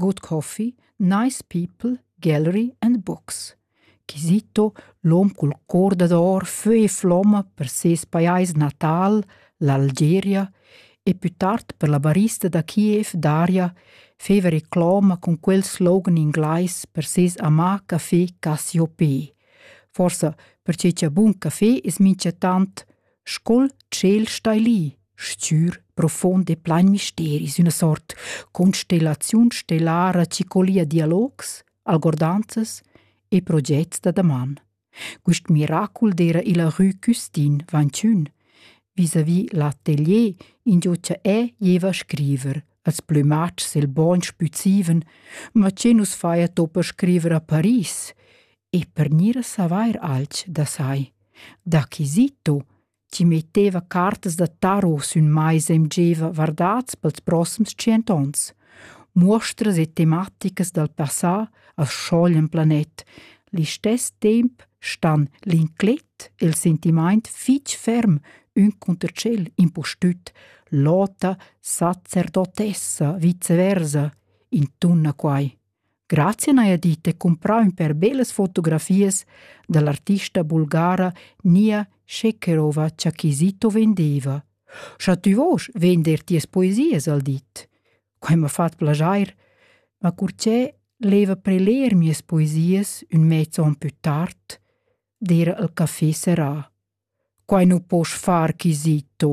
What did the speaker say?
Good Coffee, Nice People, Gallery and Books. Kisito, l'hom cul cor dad or fö e flomma per ses pajais natal, l'Algeria, e pü tard per la barista da Kiev Daria, feva reclama cun quel slogan inglais per ses amà café Cassiopé. Forsa perche cha bun café es minchatant Scol tschel stai lì, stgür, profund e plein misteri sün ina sort constellaziun stellara chi collia dialogs, algordanzas e progets da daman. Quist miracul d'eira il rü Custin vantschun vis-à-vis l'atelier ingio cha e gieva a scriver. Als plümatschs el bogn spüzivan, ma che nus faja to per scriver a Paris? E per gnir a savair alch da sai. D'acquisito, chi metteva cartas da tarot sün maisa e mgeva vardats pels prossims tschient ons. Muostras e tematicas dal passà as schoglian planet. Listess temp stan l'inclet e il sentimaint fich ferm ün cunter tschel impustüt l'ota sacerdotessa viceversa intunna quai. Grazia n'haja dit e cumprà ün per bellas fotografias da l'artista bulgara Nia Shekerova cha Chisito vendeva. Scha tü vosch vender tias poesias, al dit. Quai m'ha fat plaschair, ma curchè leva preler mias poesias ün mezzo on pü tard, d'eira al café serrà. Quai nu posch far, Chisito.